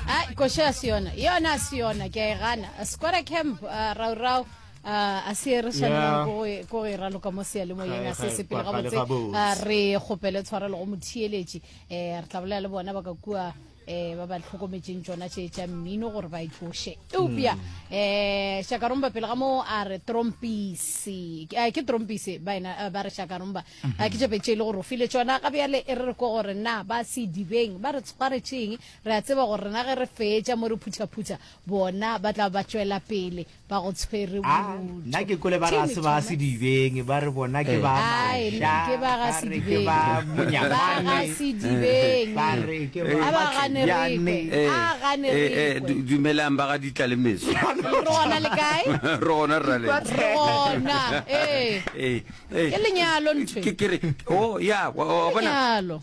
ai koše a se yona yona a se yona ke a e gana square camp uh, raurau uh, a se re swanelang ko go- ko go e raloka mo sealemoyeng Ga- a se ga- sepele ga- ga le gabotse gabotse. Ah, re kgopele tshwarelo go motheeletši um re tla bolela le bona ba ka kua um ba ba tlhokometseng tsona tše tša mmino gore ba e tloše eupša um shakaromba pele ga moo a re trompise Ke- ah, ke trompise ba ena- ah, ba re shakaromba a ke tšope tše e le gore o file tšona ga bjale e re re ko gore na ba sedibeng ba re tshwaretšeng re a tseba gore rena ge re fetša mo re phuthaphutha bona ba tla ba tšwela pele ba go tshwere ah, nna ke kole ba re a se ba sedibeng ba re bona ke eh. ba mashaake ba ga sedibeng a ba gane rekwe eh. a gane eh, rekwe dumelang ba ga ditla le meso re gona le kae re gona rrale re gona ee Eh, Ke lenyalo ntho e. ke kere o ya wa- wa- wa bona Lenyalo.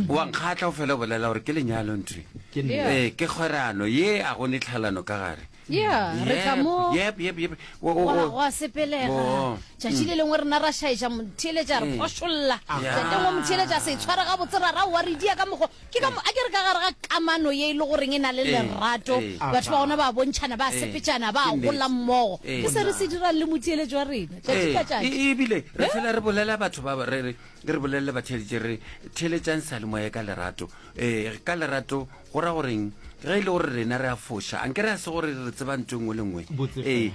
wa nkgatla o fela o bolela gore ke lenyalo ntwe Ke nna. Yeah. Eh, ke kgwerano ye a go ne tlhalano ka gare Yeah, re tla mo- Yep, yep, yep. O- o- Wa- o- wa sepelega Oh. tšatši le lengwe rena ra šaetša motheeletša re Mm. phošolla Yeah. tsetengwe motheeletša se tshware gabotse ra ra wa re dia ka mokgo ke ka mo a ke re ka gare ga kamano ye e le goreng e na le lerato batho ba gona ba bontšhana ba sepetšana ba gola mmogo ke se re se dirang le motšeeletso wa rena tšatši ka tšatši ebile re fela re bolela batho ba re re re bolelele batheletše re theletšang salemoya ka lerato um ka lerato go ra goreng ge e le gore rena re a foša anke re a se gore re tseba nto engwe le nngwe ee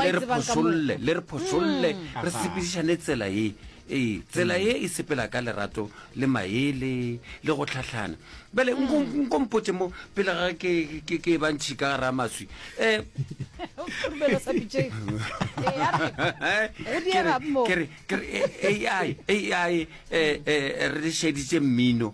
le re phošolle le re phošolle re sepedišane tsela ye Ee, tsela ye e sepela ka lerato le maele le go tlhahlana. Bjale nko mm. nko mpotše mo pele ga ke ke ke ba ntšhi ka ra maswi. Eh. Rubelo sa pitše. Ke re ke re AI AI eh eh re šeditše mmino.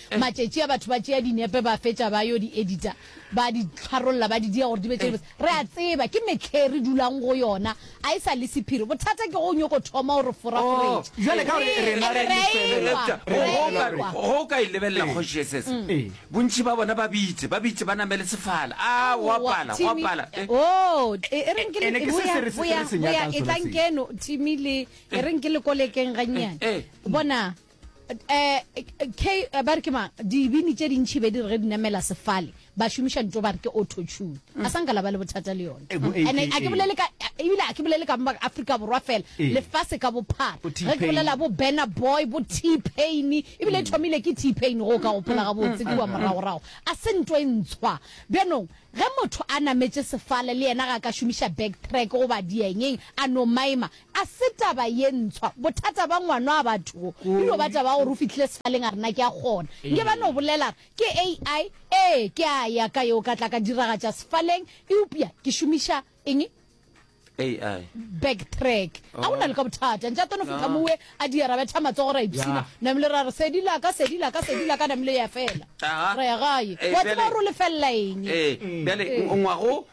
Matšetši a batho ba tšea dinepe ba fetša ba yo di edita, ba di tlharolla, ba di dia gore di be tše dibotse. Re a tseba ke mehleng re dulang go yona, a e sa le sephiri. Bothata ke ge o nyoko thoma o re foraforetša. Oh, jwale ka gore Ee, rena re a re a lefela. ekwa, Eupša, re a go- ekwa. go- go ka e lebelela Ee. kgoši SS. Ee. bontši ba bona ba bitse ba bitse ba namele sefala a go Aowa, apala go Timmy. apala Eh, Oh, e e reng ke Ene le ke se boya se re se- boya re se boya nyakang e sona tlang seo. keno Timmy le e reng ke le kolekeng gannyane. Eh, eh. Bona um ba re ke mang dibini tše dintšhi be di re ge di namela sefale ba šomiša nto ba re ke autotune a sa nka la ba le bothata le yone and a ke bolele ka ebile a ke bolele ka ba afrika borwa fela lefase ka bophara ge ke bolela bo banner boy bo t pain ebile e thomile ke t pain go ka gopola ga botse kua moragorago a se nto e ntshwa bjanong ge motho a nametše sefale le yena ga a ka šomiša back track goba diengeng a no maima A se taba ye ntshwa, bothata ba ngwano a batho go e no ba taba ya gore o fihlile sefaleng a re na ke a kgona. Nke ba no bolela re ke AI, ee, ke a ya ka yo ka tla ka diragatša sefaleng eupša ke šomiša eng? AI. Back track. A go na le ka bothata. Ntša tono fihla mo we a di ra betha matsogo ra ipshina. Namile ra re sedi la ka, sedi la ka, sedi la ka, namile ya fela. Ra ya gae. Wa tseba gore o lefelela eng. Ee, bjale ngwago.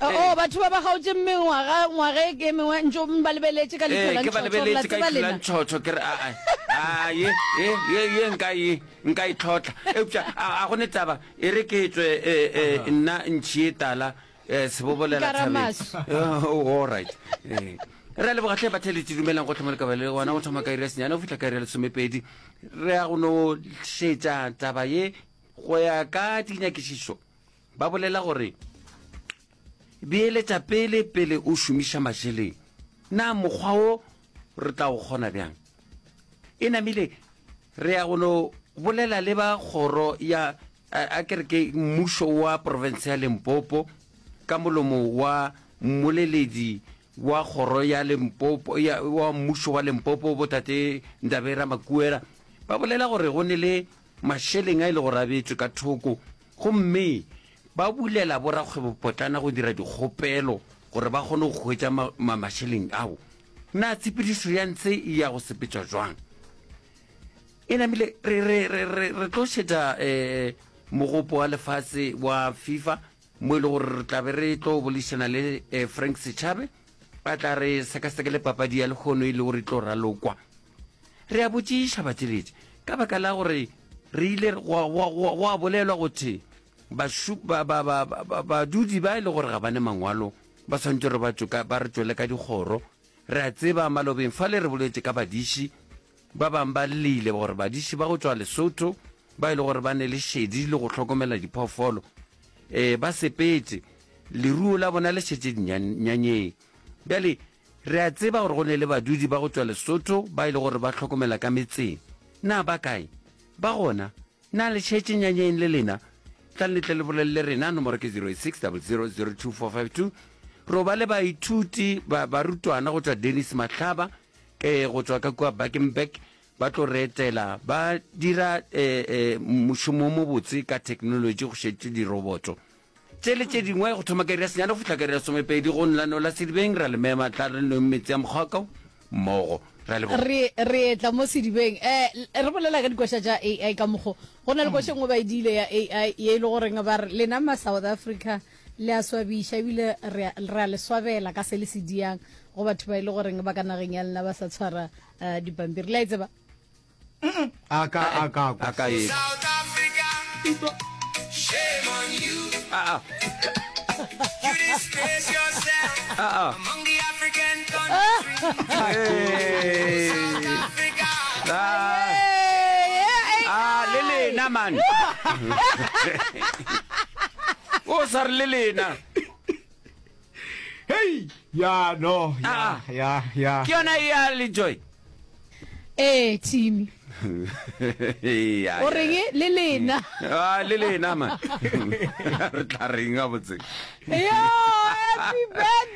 O, batho ba ba kgaotše mengwaga, ngwaga e ke e mengwe, ntšo ba lebeletše ka leihlo la ntšhotšho, gore la tseba lena. Ee, ke ba lebeletše ka leihlo la ntšhotšho, ke re, a, a, a, ye, ye, ye, ye nka e, nka e tlhotla. Eupša, a, a go ne taba, e re ke tswe, e, e, nna ntšhie tala, e, sebobolela thabeng. Oh, all right. Ee. Re a leboga hle batheletši, dumelang gohle mo le ka ba le gona, go thoma ka iri ya senyane go fihla ka iri ya lesomepedi. Re ya go no šetša taba ye go ya ka dinyakišišo. Ba bolela gore, Beeletša pele pele o šomiša mašeleng. Na mokgwa wo re tla o kgona bjang? E namile re ya go no bolela le ba kgoro ya a kere ke mmušo wa porofense ya Limpopo ka molomo wa mmoleledi wa kgoro ya Limpopo ya wa mmušo wa Limpopo botate Ndabera Makuera ba bolela gore go ne le mašeleng a ile go rabetšwe ka thoko Gomme ba bulela borakgwebopotlana go dira dikgopelo gore ba kgone go hwetša ma, ma, mašeleng ao. Na tshepedišo ya ntshe e ya go sepetšwa jwang? E namile, re, re, re, re, re tlo šetša eh, mogopo wa lefase wa FIFA, mo e le gore re tla be re tlo bolišana le eh, Frank Setšhabe Ba tla re sekasekele papadi ya lehono e lego re tlo ralokwa. Re a botšiša batšeletši ka baka la gore re ile go a bolelwa go the badudi ba e le gore ga ba ne mangwalo ba tshwanetse gore ba re tšwele ka dikgoro re a tseba malobeng fa le re boletše ka badiši Ba bang ba llile gore badiši ba go tšwa Lesotho ba e le gore ba ne le šedi le go hlokomela diphoofolo e ba sepetše, leruo la bona le šetše dinyanyeng. Bjale re a tseba gore go ne le badudi ba go tšwa Lesotho ba e le gore ba hlokomela ka metseng. Na ba kae? Ba gona? Na le šetše nyanyeng le lena? Tlang le tle le bolelele rena, nomoro ke 08600024552. Ro ba le baithuti, ba, barutwana go tšwa Dennis Mahlaba, Ke go tšwa ka kua Bakenberg, ba tlo re etela. Ba dira mošomo o mobotse ka theknolotši go šetše diroboto tše le tše dingwe go thoma ka iri ya senyane go fihla ka iri ya somepedi go nlano la sedibeng. Ra le mema, tla re nweng metsi a mokgwaka o mmogo. Ra leboga. Re, re etla mo sedibeng. Eh, re bolela ka dikoša tša AI ka mokgo. Go na le koša e nngwe ba e diile ya AI ye e le goreng ba re, Lena ma-South Africa, le a swabiša ebile re a le swabela ka se le se diang go batho ba e le goreng ba ka nageng ya lena ba sa tshwara eh, dipampiri le a e tseba a ka a ka kwa. a ka e South Africa, shame on you. a a You disgrace yourself a a among the African countries. Hey. South Africa, Ah, Eh, eh, ah, le lena man o sa re le lena hei ya no ya Ah. ya ya ke yona e ya le joy ee timi Ya, o ya, reng ya. le lena Ah, le lena ma re tla reng ga botse yo happy birthday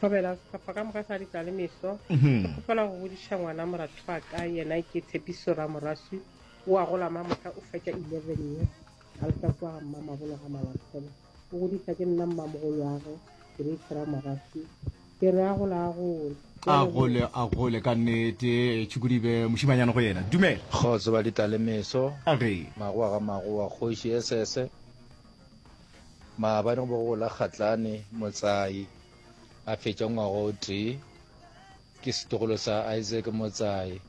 thobela sehlopha ka moka sa di tla le meso mhm. ke kgopela go bodiša ngwana moratho wa ka yena ke tshepiso ra moraswi o a gola ma mohla o fetša eleven ye a le tlatso wa ga mma mabolo ga malatholo o godisa ke nna mmamogolo wa ge ke re itshera moraswi ke re a gola a gole a gole a gole ka nnete tšhukodibe mošimanyana go yena dumela kgotso ba di tla le meso magoa ga magoa kgoši esese Maabane go be go la Kgatlane Motsai a fetša ngwaga o tee ke setogolo sa Isaac Motsai.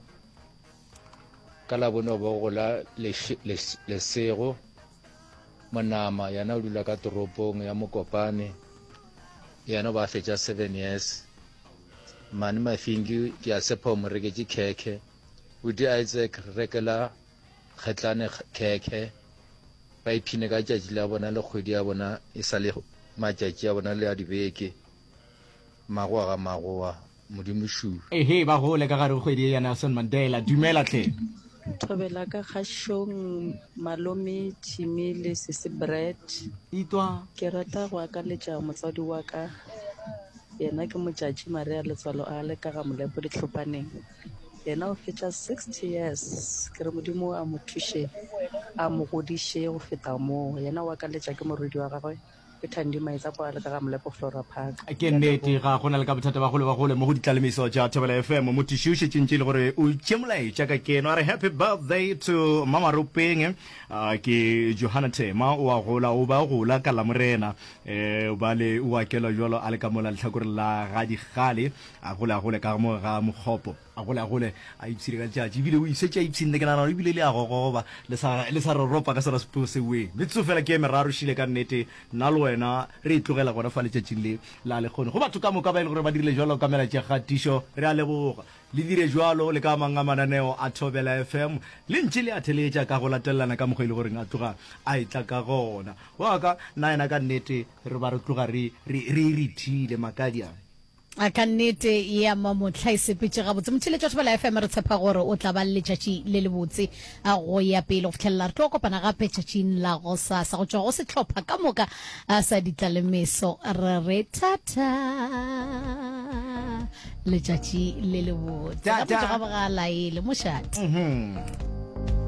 Ka labone go be go la Lesego Monama yena o dula ka toropong ya Mokopane yena ba fetša seven years. Mane Mafinki ke a sepha o mo reketše khekhe. O di Isaac rekela kgetlane khekhe, ba iphine ka tšatši la bona le kgwedi ya bona e sa le matšatši a bona le a dibeke, magoa ga magoa, Modimo šuu. Ehe, ba gole ka gare go kgwedi ye ya Nelson Mandela. Dumela hle. Thobela ka kgašong malome Jimmy le sese Brett. Itwa. Ke rata go akaletša motswadi wa ka yena ke motšatši Maria Letswalo a le ka ga Molepo Dihlopaneng. yena o fetša 60 years ke re modimo a mo thuše a mo godiše go feta moo yena o akaletša ke morwedi wa gagwe ke thandi maetsa kwa le ka ga molepo flora park ke nnete ga gona le ka bothata ba gole ba gole mo go ditlalemiso tša thobela fm motiši o šetšeng tše le gore o tše molaetša ka keno a re happy birthday to mamaropeng ah, ke johana thema o a gola o ba gola ka lamorena um eh, bale o akela jalo a le ka mola letlhakoreng la ga digale A gole, a gole ka mo ga mokgopo. A gole, a gole, a ipshine ka letšatši. Ebile o šetše a ipshinne, ke nagana gore ebile le a gogoba, le sa, le sa roropa ka sona sepoo sewee. Metsotso feela ke e meraro šele ka nnete, nna le wena re e tlogela gona fa letšatšing le la lehono. Go batho ka moka ba e le gore ba dirile bjalo ka melaetša ya kgatišo, re a leboga. Le dire bjalo le ka a mang a mananeo a Thobela FM. Le ntše le a theeletša ka go latelelana ka mokgwa e le goreng a tloga a etla ka gona. Wa ka, nna yena ka nnete re ba re tloga re, re, re e rithile, makadiaa. A ka nnete ya mamohla e sepetše gabotse. Motšheletši wa Thobela FM, re tshepa gore o tla ba le letšatši le lebotse a go ya pele go fitlhelela re tlo kopana gape tšatšing la gosasa go tšwa go sehlopha ka moka a sa ditla le meso. Re re thata letšatši le lebotse. Ka Thata. motho ga bogalaele mošate.